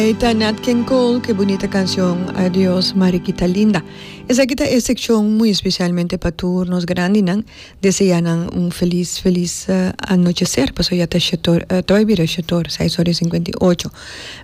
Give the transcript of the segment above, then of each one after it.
Ey ta Nat King Cole cu e bunita cancion Adios Mariquita Linda. Esaki ta e seccion muy especialmente pa tur nos grandinan. Desea nan un feliz, feliz anochecer pasobra ya ta shetor, ta bay bira shetor, seis ora y cincuenta y ocho.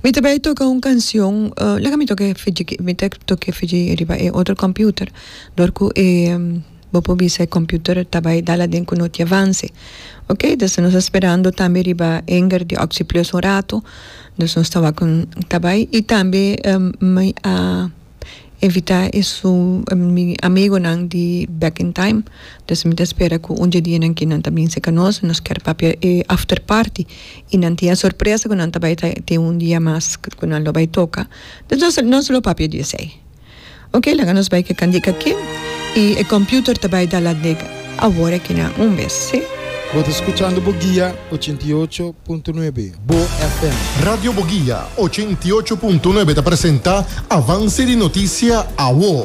Mi ta bay toca un cancion, laga mi toca e fiji, mi ta toca e fiji riba e otro computer dor cu e. Bo por bisa e computer ta bay dal aden cu no tin avance. Ok, dus nos a sperando tambe riba hanger di Oxyplus un rato, dus nos ta wak ta bay y tambe mi a invita e su mi amigonan di Back in Time, dus mi ta spera cu un dje dia nan kinan ta binse ca nos, nos kier papia e after party y nan tin a sorpresa cu nan ta bay tin un dia mas cu nan lo bay toca, nos lo papia di esey. Oke, laga nos bai ke kandika aki, i e komputer ta bai da ladek awor akina un bes, si. Bo ta skuchando Boguia ochenta i ocho punto nuebe, Bo FM. Radio Boguia ochenta i ocho punto nuebe ta presenta Avance di Noticia, awo.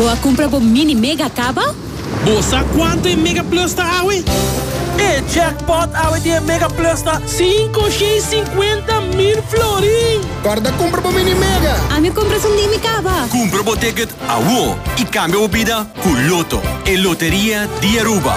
Bo a cumpra bo mini mega caba? Bo sa cuanto e Mega Plus ta awe? E jackpot awe di e Mega Plus ta cinco shei cincuenta mil florin! Corda cumpra bo mini mega! Ami cumpra su mini caba! Cumpra bo ticket awo y cambia bo bida cu Lotto, e loteria di Aruba!